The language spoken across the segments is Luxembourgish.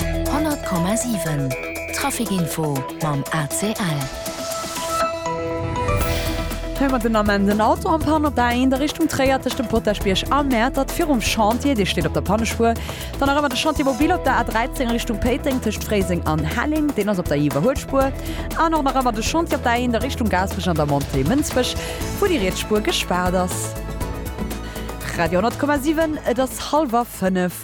100,7 Trafic Info mam ACL. Hei mer den Ament en Auto am Panne op der A1 a Richtung Tréier tëscht dem Potaschbierg a Mäertert virum Chantier, dee steet op der Pannespuer. Dann nach ëmmer de Chantier mobil op der A13 Richtung Péiteng tëscht Fréiseng an Helleng, deen ass op der Iwwerhuelspuer. An och nach ëmmer de Chantier op der A1 a Richtung Gaasperech an der Montée Mënsbech, wou déi riets Spuer gespaart ass. Radio 10,7 Et ass hallwer fënnef.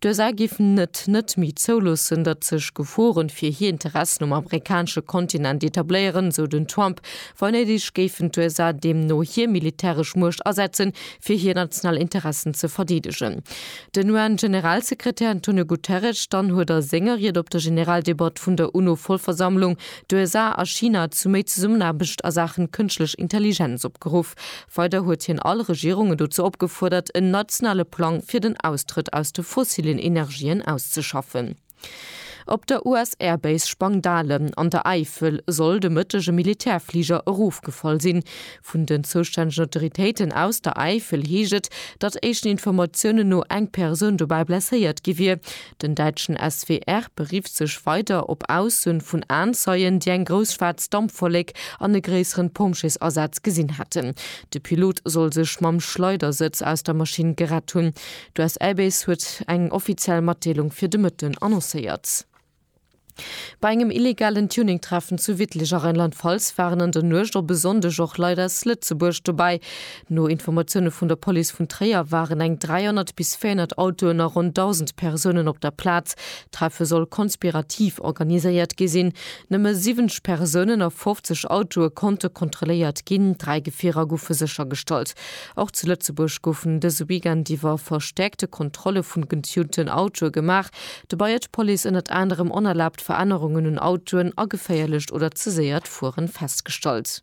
D'USA géifen et net méi zouloossen, datt sech Geforen fir hir Interessen um amerikanesche Kontinent etabléieren, sou den Trump. Wa néideg, géifen d'USA deemno hir militäresch Muecht asetzen, fir hir national Interessen ze verdeedegen. Den UN-Generalsekretär Antonio Guterres dann huet a senger Ried op der Generaldebatt vun der UNO-Vollversammlung d'USA a China zu méi Zesummenaarbecht a Saachen Kënschtlech Intelligenz opgeruff. Weider huet hien all Regierungen dozou opgefuerdert, en nationale Plang fir den Austrëtt aus de fossillen Energien auszeschaffen. Op der US-Air-Base Spangdahle an der Äifel soll de Mëtteg e Militärfliger erofgefall sinn. Vun den zoustännegen Autoritéiten aus der Äifel heescht et, datt éischten Informatiounen no eng Persoun dobäi blesséiert gi wier. Den däitschen SWR berifft sech weider op Aussuen vun Aenzeien, déi eng grouss schwaarz Dampwollek an e gréisseren Pompjeesasaz gesinn hätten. De Pilot soll sech mam Schleidersëtz aus der Maschinn gerett hunn. D'US Air Base huet eng offiziell Matdeelung fir de Mëtten annoncéiert. Bei engem illegalen Tuning-Treffen zu Wittlich a Rheinland-Pfalz waren an der Nuecht op e Sonndeg och Leit aus Lëtzebuerg dobäi. No Informatioune vun der Police vun Tréier waren eng 300 bis 400 Autoen a ronn 1.000 Persounen op der Plaz. D'Treffe soll konspirativ organiséiert gi sinn. Nëmme 70 Persounen a 50 Autoe konnte kontrolléiert ginn, dräi Gefierer goufe séchergestallt. Och zu Lëtzebuerg goufen dëse Weekend iwwer verstäerkte Kontrolle vun getunten Autoe gemaach. Dobei huet d'Police ënnert anerem onerlaabt Verännerungen un Autoen a geféierlecht oder ze séiert Fueren festgestallt.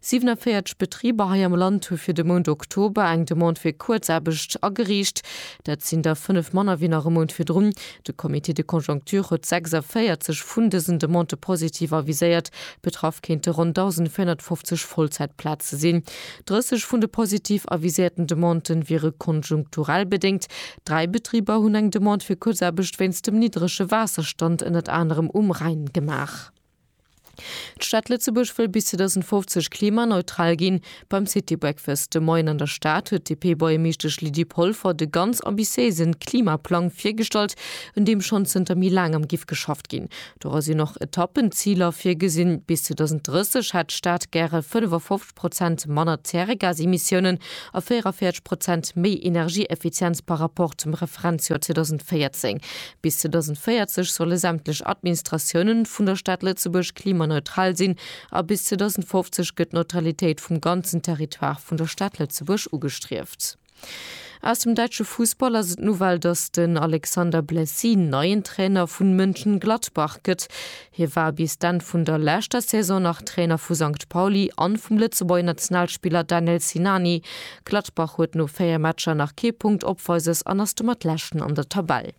47 Betriber hei am Land hu fir de Mount Oktober eng Demande fir Kuerzaarbecht ageriicht. Dat sinn der 5 manner wéi nach e Mount virdrun. De Comité de conjoncture huet 46 vun dësen Demandë positiv aviséiert. Betraff kéinte ronn 1.450 Vollzäitplaze sinn. 30 vun de positiv aviséierten Demandë wiere konjunkturell bedéngt, Dräi Betriber hunn eng Demande fir Kuerzaarbecht wéinst dem niddrege Waasserstand ënnert anerem um Rhäin gemaach. D'Stad Lëtzebuerg wëll bis 2050 klimaneutral ginn. Beim City Breakfast de Moien an der Stad huet d'DP-Buergermeeschtesch Lydie Polfer de ganz ambitiéise Klimaplang virgestallt, un deem schonn zënter méi laang am giff geschafft ginn. Dora sinn och Etappenziler virgesinn, bis 2030 hätt d'Stad gäre 55. Prozent manner Zäregasemissiounen a 44 Prozent méi Energieeffizienz par Rapport zum Referenzjoer 2014. Bis 2040 solle sämtlech Administratiounen vun der Stad Lëtzebuerg klimaneutral sinn a bis 2050 gëtt d'Neutralitéit vum ganzen Territoire vun der Stad Lëtzebuerg ugestrieft. Aus dem däitsche Fussball ass et d'Nouvelle, datt den Alexander Blessy neien Trainer vun Mönchengladbach gëtt. Hie war bis d'Enn vun der leschter Saison nach Trainer vu Sankt Pauli an vum Lëtzebuerger Nationalspiller Danel Sinani. Gladbach huet no 4 Matcher nach kee Punkt opweises an ass domat Leschten an der Tabell.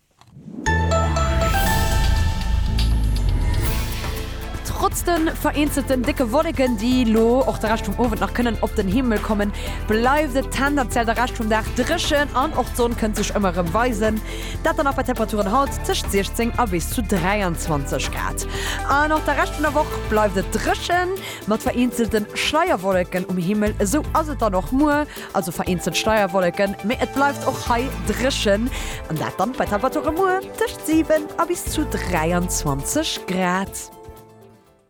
Trotz de vereenzelten décke Wolleken, déi elo och de Rescht vum Owend nach kënnen op den Himmel kommen, bleift et tendenziell de Rescht vum Dag dréchen an och d'Sonn kënnt sech ëmmer erëm weisen. Dat dann nach bei Temperaturen haut tëscht 16 a bis zu 23 Grad. An och de Rescht vun der Woch bleift et dréchen, mat vereenzelte Schleierwolleken um Himmel. Esou ass et dann och muer. Also vereenzelt Steierwolleken, mee et bleift och hei dréchen, an dat dann bei Temperature muer tëscht 7 a bis zu 23 Grad.